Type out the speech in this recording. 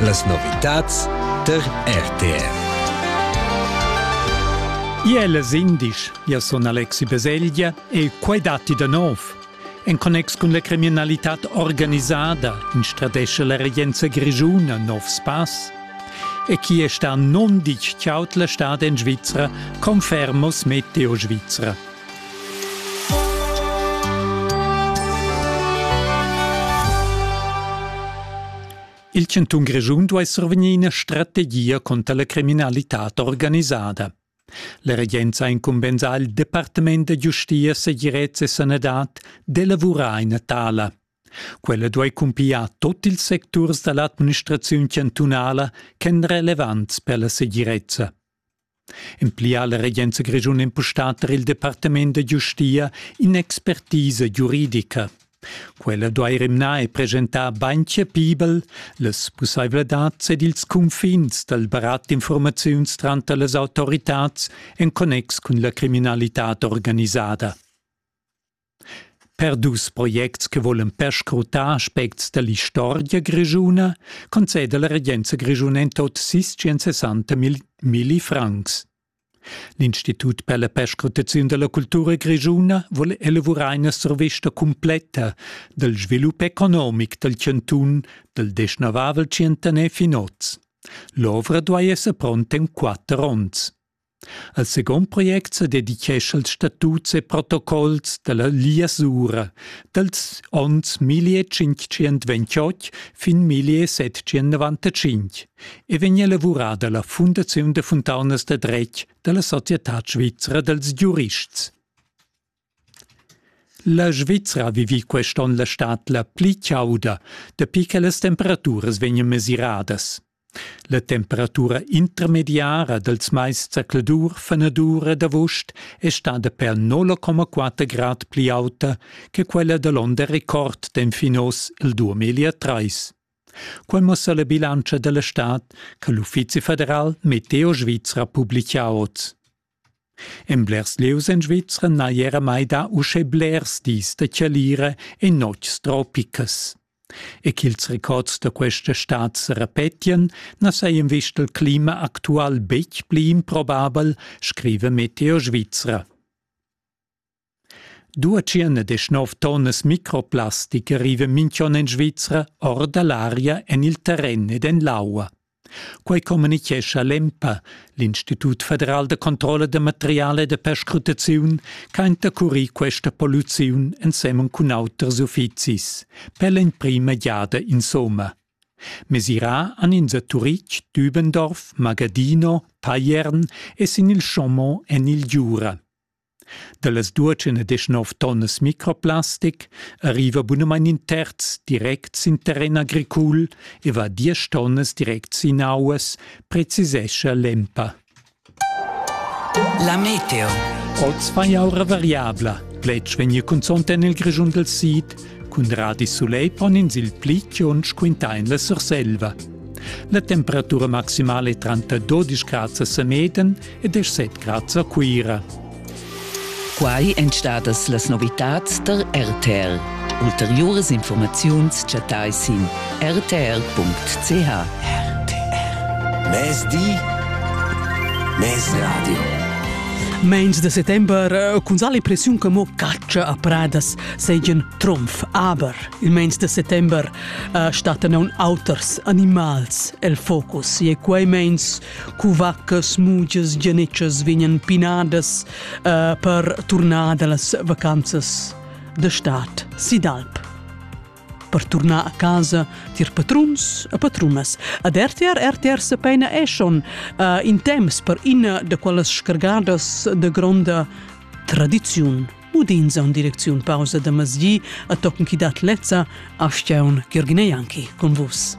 Las novitads tar RTR. Iel es indisch, io sun Alexi Baselgia e quai datti da nov. En connex cun la criminalità organisada instradesce la regenza grigiuna nov spass. E chi è sta non dich ciaut la stad en Svizzera, confermos Meteo Svizzera. Il chantun Grischun duai survegnir ina strategia contra la criminalitad organisada. La regenza ha incumbensà il Departament da giustia, segirezza e sanadad d'elavurar ina tala. Quella duai cumpigliar tut ils secturs da l'administraziun chantunala ch'èn relevants per la segirezza. En pli ha la regenza grischuna impustà tar il departament da giustia in'expertisa giuridica. Quella duai rimnar e presentar bain chapibel las pussaivladads ed ils cunfins dal barat d'infurmaziuns tranter las autoritads en connex cun la criminalitad organisada. Per dus projects che vulan perscrutar aspects dall'istorgia grischuna conceda la regenza grischuna en tot sis sessanta milli francs. L'Institut per la perscrutaziun dalla cultura grischuna vul elavurar ina survista cumpletta dal svilup economic dal chantun dal deschnavavel tschientaner fin oz. L'ovra duai esser pronta en quatter onns. Al secund project sa dedichescha il statut e protocols dalla Lia Sura dals onns 1528 fin 1795 e vegn elavurada la fundaziun da funtaunas da dretg dalla societad svizra dals giurists. La Svizra ha vivì quest onn la stad la pli chauda dapi che las temperaturas vegnan mesiradas. La temperatura intermediara dals mais zacladur, fenadur ed avust è stada per 0,4 grad pli auta che quella da l'onn da record d'enfin oz il 2003. Quel muossa la bilantscha da la stad che l'Uffizi federal Meteo Svizra publica oz. En blers lieus en Svizra n'hai era mai dà uschè blers dis da chalira e notgs tropicas. E ch'ils records da questa stad sa repetien, na sajan vist il clima actual betg pli improbabel, scriva Meteo Svizra. Dua tschien ed deschnov tonnas microplastic riva minch'on in Svizra or da l'aria en il terren ed en l'aua. Quai communichescha l'EMPA, l'Institut federal da controlla da material e da perscrutaziun, ch'ha intercurì questa polluziun ensemen cun auters uffizis, per l'emprima giada insomma. Mesirà han ins a Turitg, Dübendorf, Magadino, Payern e sin il Chaumont en il Giura. Dallas duatschen e deschanov tonnas microplastic arriva bunamain in terz direct sin terren agricul e va diesch tonnas direct sin auas, precisescha l'EMPA. La meteo. Oz fa aura variabla. Pletg vegni cunzont en il Grischun del Sid. Cun radi soleil pon ins il pli chionsch quintà en la Surselva. La temperatura maximale è tranter 12 grad a Semeden ed è set grads a Cuira. Quai èn stadas las novitads tar RTL. Ulteriuras informaziuns chattai sin rtl.ch. RTL. Mezdi, mezradio. Meins de settember eh, cun sa l'impressiun che mo catscha a pradas seigien trumf, aber il meins de settember uh, stattan aun auters animals el focus e quei meins Cuvaccas, mugias, gianetschas vegnan pinadas uh, per turnar da las vacanzas da stad si d'alp. Per turnar a casa tir patruns e patrunas. Ad RTR RTR se peina eschon uh, in temps per ina de quelles scargadas de gronda tradiziun. Udins an direcziun pausa da masgi a tochen chi dat lezza a Steun Girgine Janki con vus.